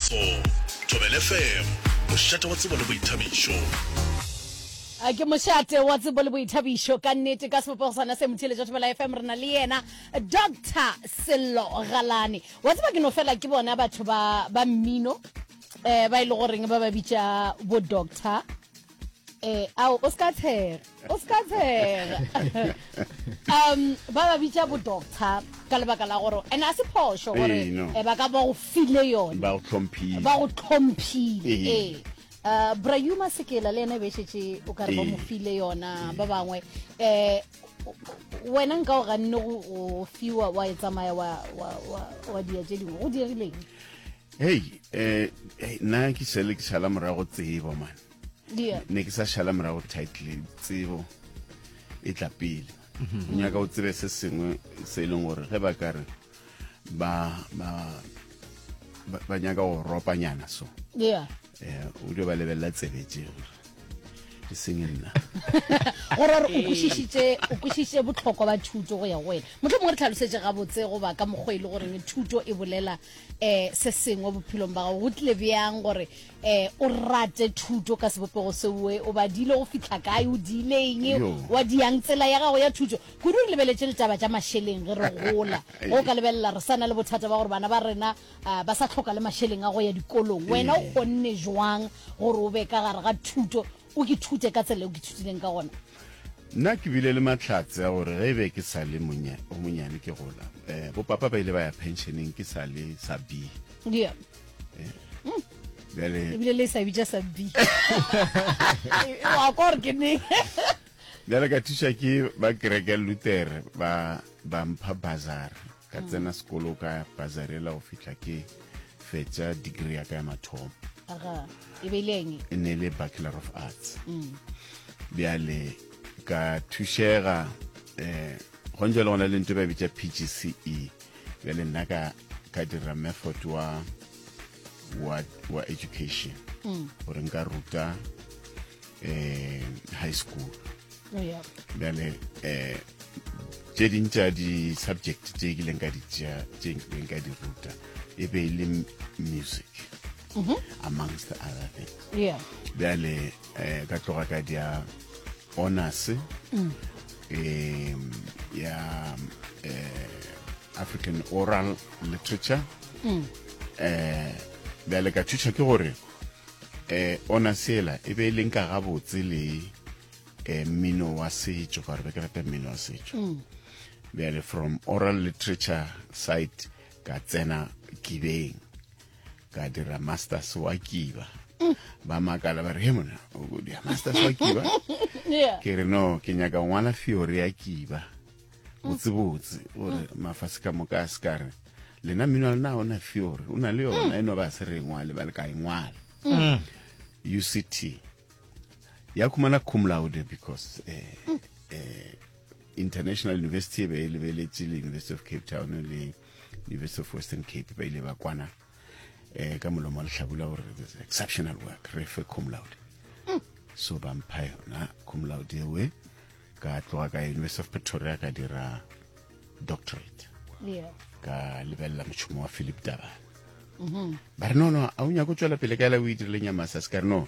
So, Thobela FM, mošate wa tsebo le boithabišo. A ke mošate wa tsebo le boithabišo ka nnete ka sebopego sona se motheletša thobela fm re na le yena doctor sello galane wa tseba ke no fela ke bona batho ba ba mmino um ba e le goreng ba ba bitša bo doctor eh ao o ska tshega o ska tshega um ba ba bitsa bo doctor ka lebaka la gore and a se phoso gore Ee, no. eh, ba ka ba go file yone ba go tlhomphile ba go tlhomphile Ee. ee Uh, brayuma sekela le ene be šetse o ka re ba Ee. mo file yona ba bangwe um wena nka o ganne go go fiwa wa e tsamaya wa- wa wa- wa dia tse dingwe go dirileng hei um nna ke šale ke šala morago tsebo mane ne ke sa šala morago title tsebo e tla pele mhm. o nyaka o tsebe se sengwe se e leng gore ge ba kare ba nyaka go ropanyana so o dio ba lebelela tsebe tse e seng nna gore re o kwešišitše o kwešišitše botlhokwa ba thuto go ya go wena motlho mongwe re tlhalosetše gabotse goba ka mokgwa e le goreng thuto e bolela um se sengwe bophelong ba gago go tlile bjang gore um o rate thuto ka sebopego seoe o badile go fitlha kae o diileng wa diang tsela ya gago ya thuto kudu re lebeletse ditaba tša mašeleng ge re gola go ka lebelela re sa na le bothata ba gore bana ba rena uh, ba sa tlhoka le mašeleng a go ya dikolong wena o ee. kgonne jwang gore o be ka gare ga thuto o ke thute ka tsela o ke thutileng ka gona nna ke bile le matlhatse a gore ge e be ke sa le o monyane ke gola um eh, bopapa ba ile ba ya pensioneng ke sa le sa b yeah. Eh. mm. ebile le sa bitša sa b wa kore ke ne bjale ka thuša ke ba kereke lutere ba mpha bazar ka tsena sekolo ka bazarela go fitlha ke fetša degree ya ka ya mathomo e, e ne le bachelor of arts mm. bjale ka thušega um eh, gontse le gona le nto ba bitša pgce bjale nna ka ka dira method wa wa, wa education mm. gore nka ruta um high school bjale um tše ding tša di-subject tše ke leng ka di tšea tše leng ka di ruta e be e le music mhm. amongst the other things bjale um ka tloga ka dia honors um ya eh, african oral literature um mm. eh, bjale ka thuša ke gore um honors ela e be e leng ka gabotse le eh, mmino wa setšo ka gore be ke rata mmino wa setšo mm. bjale from oral literature site ka tsena kibeng ka dira masters wa kiba mm. ba makala ba re he mona dia masters wa kiba ke re no ke nyaka ngwala fiore ya kiba mm. botsebotse gore mafase ka moka a se ka re lena mmino wa lena o na fiore o na le yona e no ba se re e ngwale ba le ka e ngwala uct ya khumana cum laude because uh, uh, international university e be e lebeletse le university of cape town le university of western cape ba ile ba kwana um ka molomo wa lehlabula gore exceptional work re fe cum laude so ba mpha yona cum laude ewe ka tloga ka university of pretoria ka dira doctorate yeah. ka lebelela mošomo wa philip daba mm-hmm. ba re nono a o nyako tswela pele ka ela o e dirileng ya masas ka re no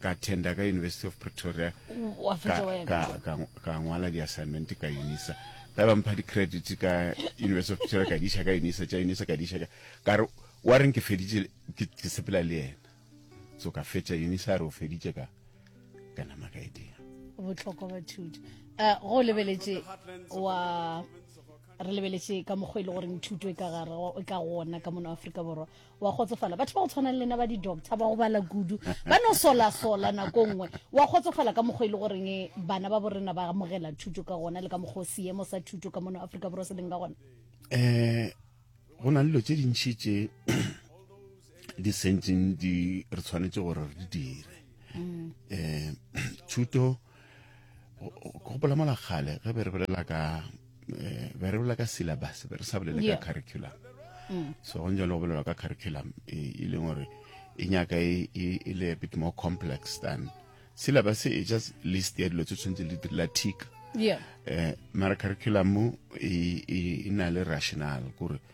ka attenda ka university of pretoria Wa ka, fetša wa ya ka, ka, ka ngwala di-assignment ka unisa ba ba mpha di-credit ka university of pretoria ka diša ka unisa tša unisa ka diša ka ka re wa reng ke feditše ke ke sepela le yena so ka fetša unisa a re o feditše ka ka nama ka e dira botlhokwa ba thuto Eh, go lebeletše wa re lebeletše ka mokgwa e le goreng thuto e ka gare go- e ka gona ka mono aforika borwa wa kgotsofala batho ba go tshwana le lena ba di-doctor ba go bala kudu ba no solasola nako nngwe wa kgotsofala ka mokgwa e le goreng eh, bana ba borena ba amogela thuto ka gona le ka mokgwa seemo sa thuto ka mono aforika borwa se leng ka gona um go na le dilo tse dintšhi tse di sentseng di re tshwanetse gore re di dire um thuto gopola mola kgale ge be re bolela ka eh, be re bolela ka syllabus be re sa bolele ka curriculum mm. so go njalo go bolelwa ka curriculum e, e leng gore e nyaka e, e, e le a bit more complex than syllabus e just list ya dilo tse tshwanetse le direla tick yeah. eh, mara curriculum e, e, e na le rational kore